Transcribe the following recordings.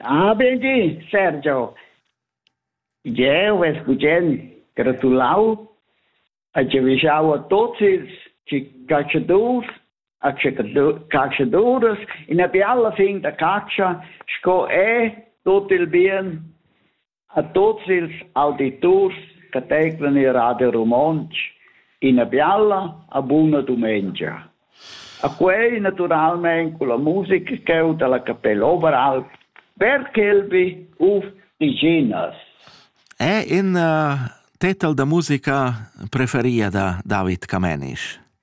Ah, bendì, Sergio. Jeu vess bugen gratulau e giavischau a tuts ils caschadurs e caschaduras ina biala fin da catscha sco è tut il bien. A tuots ils auditurs che teiclan il Radio Romontsch ina bialla e buna dumengia. A quei naturalmein culla musica cheu dalla Capella Oberalp per Kelby uf Diginas. È in uh, tetel da musica preferia da David Camenisch?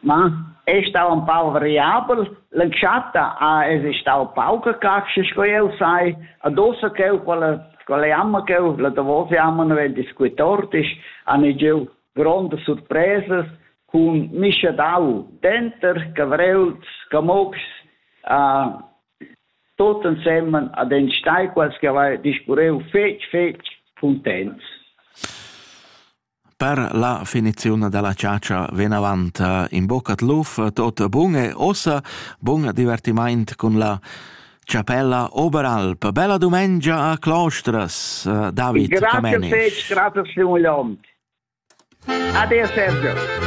Ma ei stau empau variabel. L'entschatta ha esi stau pauca catscha sco jeu sai. Adossa cheu quella quella jamma cheu la davos jamma naven discuer tortis han giu grondas surpresas cun mischadau denter cavréls, camotgs, uh, tot ensemen ad enstagl quels che haveva discurreu fetg fetg cuntents. Per la finiziun dalla chatscha vinavant in bocca d'luf, tot bun e ussa bun divertimaint cun la Chapella Oberalp. Bella dumengia a Clostras, David Grazie Camenisch. Fetsch, grazie Stimulant. Ade Sergio.